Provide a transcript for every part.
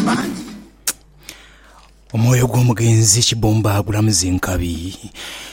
mangi. Omwoyo gw'omugenzi Kibumba gulamuze nkabi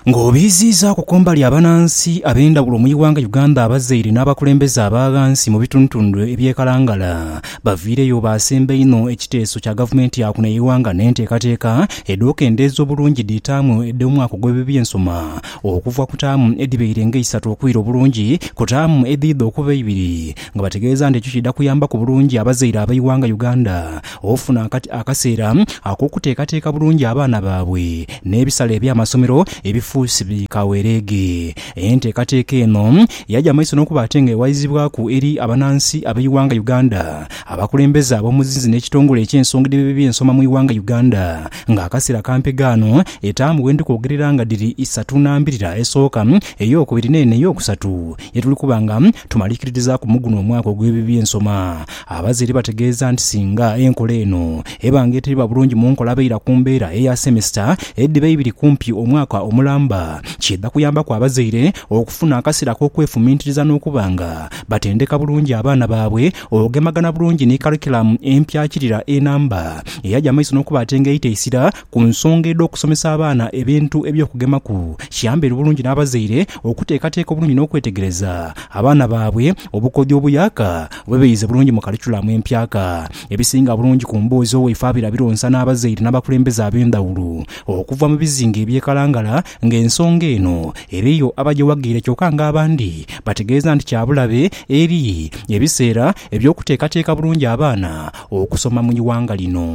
ng'obiiziizaaku kumbali abanansi ab'endhawulo mu ighanga Uganda abazaire n'abakulembeze aba ghansi mu bitundutundu eby'e Kalangala baviireyo baasemba inho ekiteeso kya gavumenti ya kuno eighanga n'enteekateeka edh'okendeeza obulungi dhi taamu edh'omwaka ogw'ebyensoma okuva ku taamu edhibaire nga eisatu okwira obulungi ku taamu edhiidha okuba eibiri nga bategeeza nti ekyo kiidha kuyambaku bulungi abazaire ab'eighanga Uganda okufuna akaseera ak'okuteekateeka bulungi abaana baabwe n'ebisale eby'amasomero ebifuusi bi kawereege. Enteekateeka eno yaja mu maiso n'okuba ate nga ewaizibwaku eri abanansi ab'eighanga Uganda, abakulembeze ab'omuzinzi n'ekitongole eky'ensonga edh'ebyensoma mu ighanga Uganda nga akaseera kampe gaano etaamu wendi kwogerera nga dhiri isatu n'ambirira esooka, ey'okubiri n'eno ey'okusatu ye tuli kuba nga tumalikirizaaku mu guno omwaka ogw'ebibyensoma. Abazaire bategeeza nti singa enkola eno eba nga eteriba bulungi mu nkola abeira ku mbeera eya semesita edhiba eibiri kumpi omwaka omulamba, kiidha kuyambaku abazaire okufuna akaseera ak'okwefumintiriza n'okuba nga batendeka bulungi abaana baabwe okugemagana bulungi ni karikiramu empyakirira enamba eyaja mu maiso n'okuba ate nga eita eisira Ku nsonga edh'okusomesa abaana ebintu eby'okugemaku, kiyambe bulungi n'abazaire okuteekateeka obulungi n'okwetegereza abaana baabwe obukodyo obuyaaka oba ebiyize bulungi mu kalikulamu empyaka. Ebisinga bulungi ku mboozi owaife abira bironsa n'abazaire n'abakulembeze ab'endhawulo okuva mu bizinga eby'e Kalangala ng'ensonga eno eriyo abagyewagiire kyoka ng'abandi bategeeza nti kya bulabe eri ebiseera eby'okuteekateeka bulungi abaana okusoma mu ighanga lino.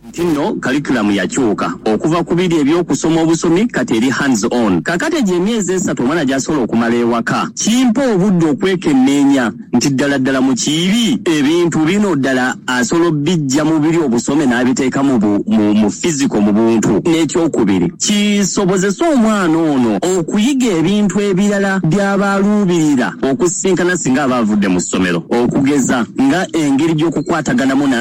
Nti nno Curriculum yakyuka okuva ku biri eby'okusoma obusomi kati eri Hands On. Kaakati egyo emyezi esatu omwana gy'asobola okumala ewaka kimpa obudde okwekenneenya nti ddala ddala mu kiibi ebintu bino ddala asobola obiggya mu biri obusome n'abiteeka mu bu, mu, mu physical, mu buntu. N'ekyokubiri, kisobozese omwana ono okuyiga ebintu ebirala by'aba aluubirira okusisinkana singa aba avudde mu ssomero, okugeza nga engeri gy'okukwataganamu n'a.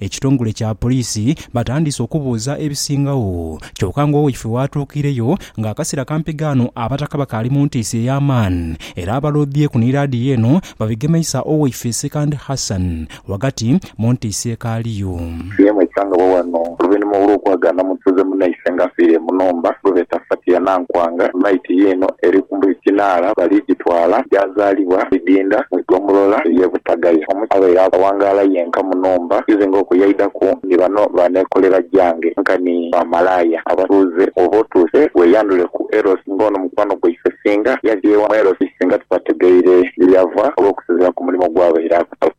Ekitongole kya poliisi batandise okubuuza ebisingagho kyoka nga owaife waatuukiireyo nga akasera kampi ghano abataka bakaali mu ntiisa ey'amaani era abaloodhyeku ni laadiyo eno babigemeisa owaife Sekandi Hassan ghagati mu ntiisa ekaaliyo. Fiona yasangibwa ghano oluvainhuma olw'okwagaana mutuuze munaise nga afiire mu nhumba gwebeeta Fatia Nankwanga. Maiti ye eno eri Buli kinaala baligitwala gyazaalibwa Bidinda mu igombolola ey'e Butagaya. Omusaadha abaire awangaala yenka mu nhumba nze nga okuyaidhaku ni bano ba neekolera gyange nkani ba malaaya abatuuze. Bw'oba otuuse weeyandhule ku Eros nga ono mukwano gwaife singa yadhye ewa Eros singa tubategeire ye yava olw'okusinziira ku mulimo gw'abaire akola.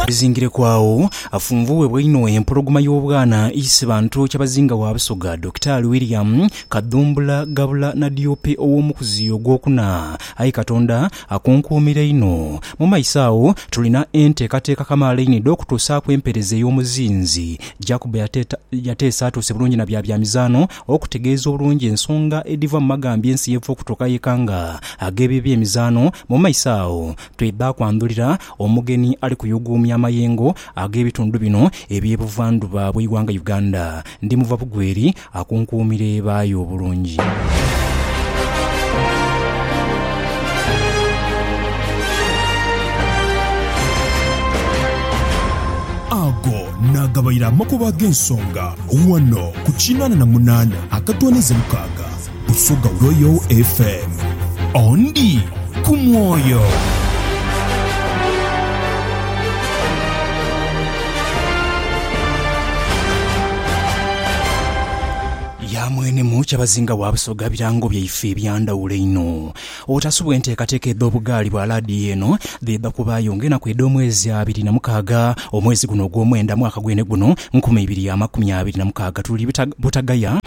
Bizingireku agho, afunvubwa einho empologoma y'obwana eise bantu Kyabazinga wa Busoga, Dokitaali William Kadhumbula Gabula Nadiope ow'omukuzi ogwokuna. Aye Katonda akunkuumira inho. Mu maiso agho tulina enteekateeka kamaala einho edh'okutuusaaku empeereza ey'omuzinzi. Jacob yateesaatuuse bulungi na bya byamizaano. Okutegeeza obulungi ensonga edhiva mu magambya ensi yeva okutuuka yeka nga ag'ebyo eby'emizaano, mu maiso agho twedha kwandhulira omugeni ali kuyuuguumya amayengo ag'ebitundu bino eby'e buvandhuba bw'eighanga Uganda. Ndi muva bugweri akunkuumira eba y'obulungi. Ago naagabaire amakubo ag'ensonga Wano ku kinaana na munaana akatwaniza mukaaga Busoga Royal FM. Ondi ku mwoyo. Yamwenemu Kyabazinga wa Busoga birango byaife ebyandhawulo einho. Obutasubwa enteekateeka edh'obugaali bwa laadiyo eno dhidha kubaayo ng'enaku edh'omwezi abiri na mukaaga omwezi guno ogw'omwenda mwaka gwene guno nkumi ibiri ya makumi abiri na mukaaga. Tuli Butagaya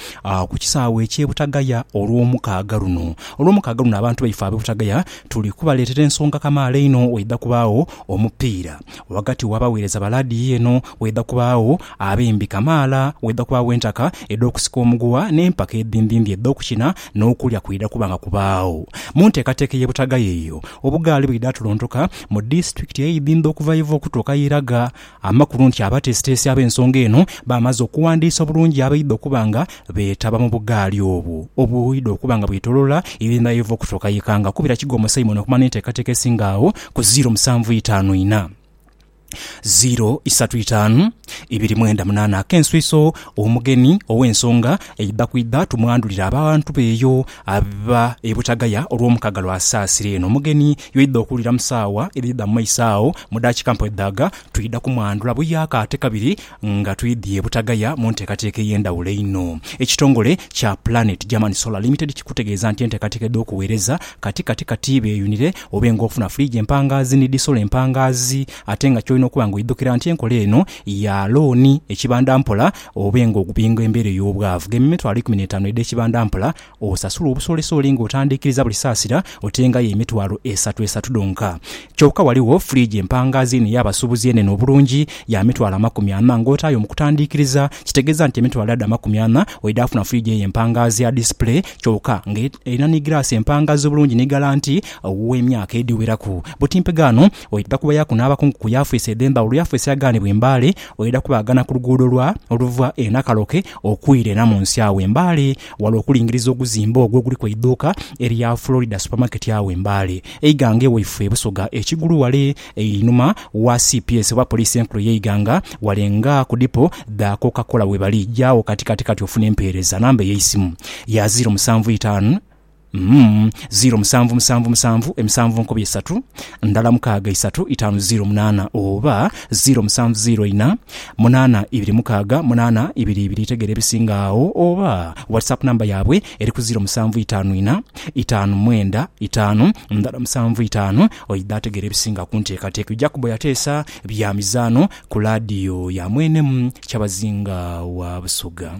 ku kisaawe eky'e Butagaya olw'omukaaga luno. Olw'omukaaga luno abantu baife ab'e Butagaya tuli kubaleetera ensonga kamaala einho waidha kubaagho omupiira ghagati w'abaweereza ba laadiyo eno, waidha kubaagho abembi kamaala, waidha kubaagho entaka edh'okusika omuguwa n'empaka edhindhindhi edh'okukina N'okulya kwidha kuba nga kubaagho mu nteekateeka ey'e Butagaya eyo. Obugaali bwidha tuluntuka mu disitulikiti ey'e Ibinba okuva Iva okutuuka Iraga. Amakulu nti abateesiteesi ab'ensonga eno baamaze okuwandiisa obulungi abaidha okuba nga beetaba mu bugaali obwo obwidha okuba nga bwetolola Ibinba Iva okutuuka Ikanga. Kubira Kigoma Simon okumanya enteekateeka esinga agho ku ziiro musanvu itaanu inha. ziro isatu itaanu ibiri mwenda munaana ak'enswiso omugeni ow'ensonga eidha kwidha tumwandhulire abantu be eyo aba e Butagaya olw'omukaga lwa Saasira eno omugeni yoidha okuwulira mu saawa edhidha mu maiso agho mu daakika mpwedhaaga twidha kumwandhula buyaaka ate kabiri Nga twidhie butagaya mu nteekateeka ey'endhawulo einho, ekitongole kya Planet German Solar Limited kikutegeeza nti enteekateeka edh'okuweereza kati kati kati beeyunire obe ng'ofuna fridge empangaazi ni dhi solar empangaazi ate nga ky'olina okuba ng'oidhukira nti enkola eno ya looni ekibandampola obe ng'ogubinga embeera ey'obwavu ghe mitwalo ikumi n'etaanu edh'ekibandampola Osasula obusoolisooli ng'otandiikiriza buli saasira otengayo emitwalo esatu esatu dhonka. Kyoka ghaligho fridge empangaazi eno ey'abasuubuzi enene obulungi ya mitwalo amakumi ana ng'otaayo mu kutandiikiriza kitegeeza nti emitwalo edho amakumi ana oidha kufuna fridge eyo empangaazi ya display kyoka ng'erina ni giraasi empangaazi obulungi ni galanti ow'emyaka edhiweraku. Butimpe ghano oidha kubayaku n'abakungu ku yafeesi edh'embaale olwo yafeesi yaghanibwa e Mbale oidha kubaghana ku luguudo lwa oluva e Nakaloke okwira e Namunsi agho e Mbale Wala okulingiriza oguzimbe ogwo oguliku eidhuuka erya Florida Supermarket agho e Mbale, eighanga ewaifwe e Busoga ekigulu wale einhuma wa cps oba Poliisi Enkulu ey'eighanga, wale nga ku dipo dha Coca-Cola webali. Jaagho kati kati kati ofune empeereza. Namba eyeisimu ya ziro musanvu itaanu Umm ziro musanvu musanvu musanvu emisanvu nkobi esatu ndala mukaaga isatu itaanu ziro munaana oba ziro musanvu ziro ina munaana ibiri mukaaga munaana ibiri ibiri itegera ebisinga agho oba WhatsApp number yabwe eri ku ziro musanvu itaanu ina itaanu mwenda itaanu ndala musanvu itaanu oidha ategera ebisinga kunteekateeka Jacob yateesa bya mizaano ku laadiyo ya mwene Kyabazinga wa Busoga.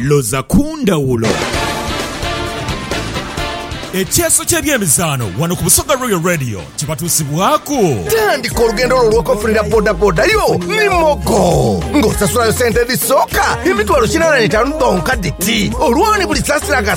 Loza ku ndhawulo. Ekyeeso ky'ebyemizaano wano ku Busoga Royal Radio kibatuusibwaaku. Tandika olugendo lwo olw'okofunira bodaboda yo ni Mogo ng'osasulayo sente edhisooka emitwalo kinaana n'etaanu dhonka dhiti. Olwo ni buli saasira nga